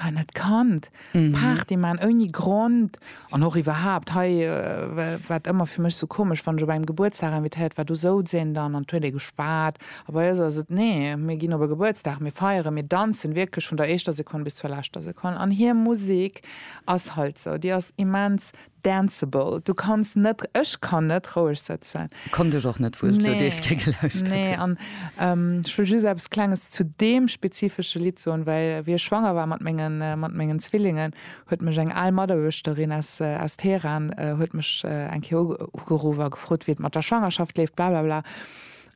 An dat Kand Party maan ouni Grond, an och iwwerhaapt hei wat ëmmer fir mech sou komesch, wann ech op engem Gebuertsdag invitéiert war, do souz een dann an et huet ee geschwat, a bei eis ass et, nee mir ginn op e Gebuertsdag, mir feieren, mir danzen wierklech vun der éischter Sekonn bis zur leschter Sekonn, an hir Musik ass halt sou, déi ass immens Danceable, du kanns net, ech kann net roueg sëtzen. Konnt ech och net, wou ech d'Lou Deeske gelauschtert hunn. Nee, an ech wëll just eppes Klenges zu deem spezifesche Lidd soen, well wéi ech schwanger war mat mengen, mat mengen Zwillingen, huet mech eng al Mataarbechterin aus, aus Teheran huet mech eng Kéier ugeruff a gefrot, wéi et mat der Schwangerschaft leeft, blablabla.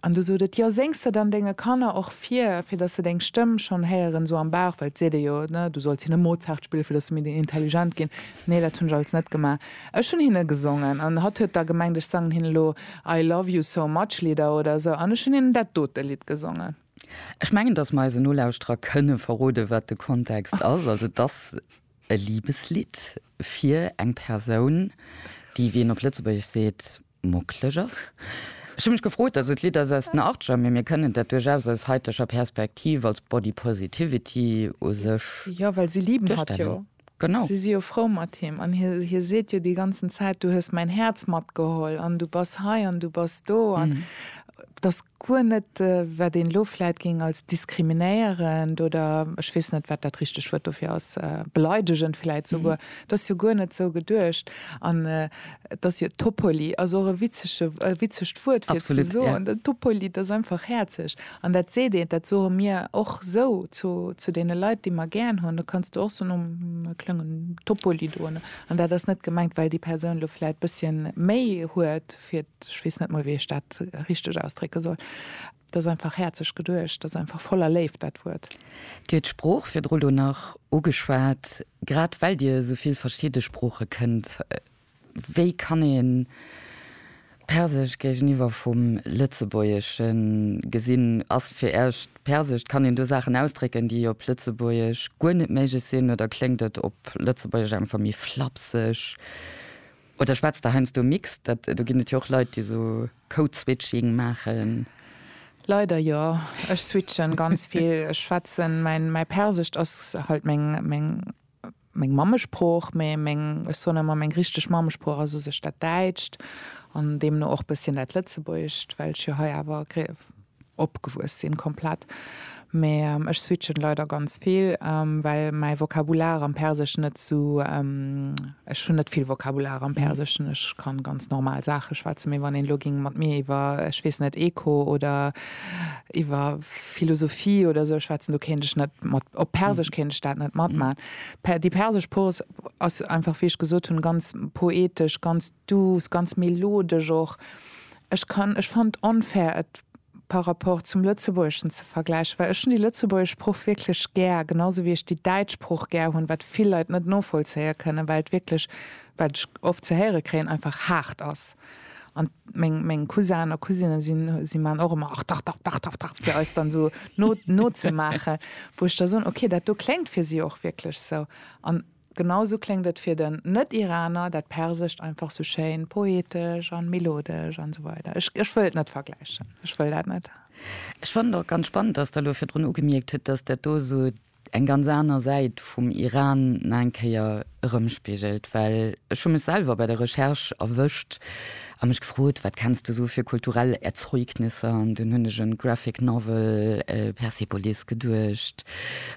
An du sot et, jo séngs de dann denge Kanner och vir, fir dass se deng Stëmm schonn héieren, esou am Bauch, well et seet ee jo, ne, du solls hinne Mozart spillen, fir dass se méi intelligent ginn. Nee, dat hunn ech alles net gemaach. Ech hunn hinne gesongen an hatt huet da gemengt, ech sangen hinnen elo I love you so much Lidder oder esou an ech hunn hinnen dat dote Lidd gesongen. Ech mengen, dass mer eisen Nolauschterer kënne verroden, wat de Kontext ass. Also et ass e Liebeslidd fir eng Persoun, déi, wéi een op Lëtzebuergesch seet, Mucklegers. Ech hu mech gefrot, also d'Lidd ass aus den Achtger, mee mir kënnen dat duerchaus aus haiteger Perspektiv als Body Positivity u sech. Jo, well si liben hatt jo. Genau. Si si jo frou mat him an hie seet jo déi ganzen Zäit, du hues mäin Häerz matgeholl an du bass hei an du bass do Et ass guer net, wat een elo vläit géing als diskriminéierend oder ech weess net, wat dat richteg Wuert dofir ass, beleidegend vläit souguer, et ass jo guer net esou geduecht. An et ass jo Toppoli ass och e witzege, e witzegt Wuert fir ze soen. Den Toppoli, dat ass einfach häerzeg. An dat seet een, dat soe mir och esou zu, zu deene Leit, déi mer gären hunn, do kanns du och soen, oh, e klengen Toppoli do. An dat ass net gemengt, well déi Persoun elo vläit e bësschen méi huet, fir, ech weess net mol wéi ech dat richteg ausdrécke soll, dat ass einfach häerzeg geduecht, dat ass einfach voller Léift dat Wuert. Dir huet d'Sprooch virdru lo nach ugeschwat, grad well Dir esou vill verschidde Sprooche kënnt, wéi kann ee Persesch géigeniwwer vum Lëtzebuergesche gesinn? Ass fir Iech d'Persescht, kann een do Saachen ausdrécken, déi op Lëtzebuergesch guer net méiglech sinn, oder kléngt et op Lëtzebuergesch einfach méi flapseg? Oder schwätzt Der heiansdo mixt? Dat, do ginn et jo och Leit, déi esou Code-Switching maachen. Leider jo. Ech switchen ganz vill. Ech schwätzen, mäin, mäi Persescht ass halt meng, meng, meng Mammesprooch, mee meng, ech soen ëmmer, meng richteg Mammesprooch ass u sech dat Däitscht an deemno och bësschen dat Lëtzebuergescht, well ech jo hei awer, Opgewuess sinn komplett, mee ech switchen leider ganz vill well mäi Vokabular am Perseschen net sou, ech hunn net vill Vokabular am Perseschen, ech kann ganz normal Saachen schwätzen, mee wann een elo géing mat mir iwwer ech weess net Eco oder iwwer Philosophie oder sou schwätzen, do kéint ech net mat, op Persesch kéint ech dat net matmaan. Déi persesch Prose ass einfach wéi ech gesot hunn ganz poetesch, ganz douce, ganz melodesch och, Ech kann, ech fannen et onfair et par rapport zum Lëtzebuergeschen ze vergläichen, well ech hunn déi lëtzebuergesch Sprooch wierklech gär, genau sou wéi ech déi däitsch Sprooch gär hunn, wat vill Leit net novollzéie kënnen, well et wierklech, wat ech oft ze héiere kréien, einfach haart ass. An meng, meng Cousin a Cousinen sinn, si maachen och ëmmer, ach dach, dach, dach, dach, dach, fir eis dann esou no, nozemaachen, wou ech da soen, okay, dat do kléngt fir si och wierklech sou. An Genau sou kléngt et fir den Net-Iraner, dat Persescht einfach sou schéin poetesch an melodesch an sou weider. Ech, ech wëll et net vergläichen, ech wëll dat net. Ech fannen et och ganz spannend, dass Der elo virdrun ugemierkt hutt, dass dat do sou eng ganz aner Säit vum Iran nach eng Kéier erëmspigelt, well ech hu mech selwer bei der Recherche erwëscht, a mech gefrot, wat kenns du sou fir kulturell Erzeugnisse an dunn hunn ech un d'Graphic Novel Persepolis geduecht,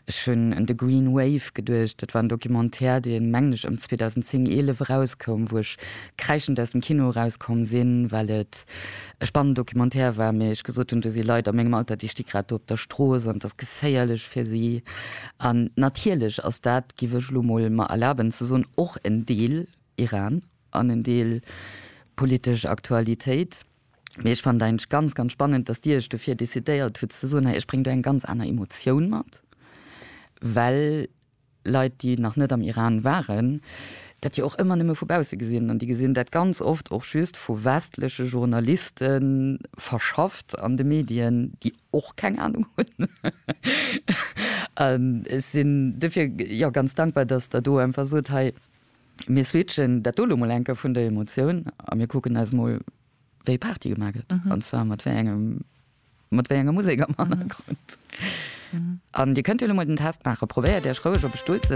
ech hunn un The Green Wave geduecht, dat war en Documentaire deen, mengen ech, ëm 2010, 11 erauskoum, wou ech kräischend aus dem Kino erauskomm sinn, well et e spannend Documentaire war, mee ech gesot hunn, do si Leit a mengem Alter, déi sti grad do op der Strooss an et ass geféierlech fir si. An natierlech ass dat, giff ech elo mol mer erlaben ze soen, och en Deel Iran an en Deel politesch Aktualitéit. Mee ech fannen et eigentlech ganz, ganz spannend, dass Dir Iech dofir decidéiert hutt ze soen, hei ech bréng do eng ganz aner Emotioun mat, well Leit, déi nach net am Iran waren, dat jo och ëmmer nëmme vu bausse gesinn an déi gesinn dat ganz oft och just vu westleche Journaliste verschafft an de Medien, déi och keng Anung hunn. An ech sinn dofir jo ganz dankbar, dass Der do einfach sot, hei, Mir switchen dat do lo mol enke vun der Emotioun a mir kucken eis mol, wéi Party gemaach gëtt, an zwar mat wéi engem, mat wéi enger Musek am Hannergrond. An Dir kënnt jo lo mol den Test maachen. Probéiert Iech roueg op e Stull ze.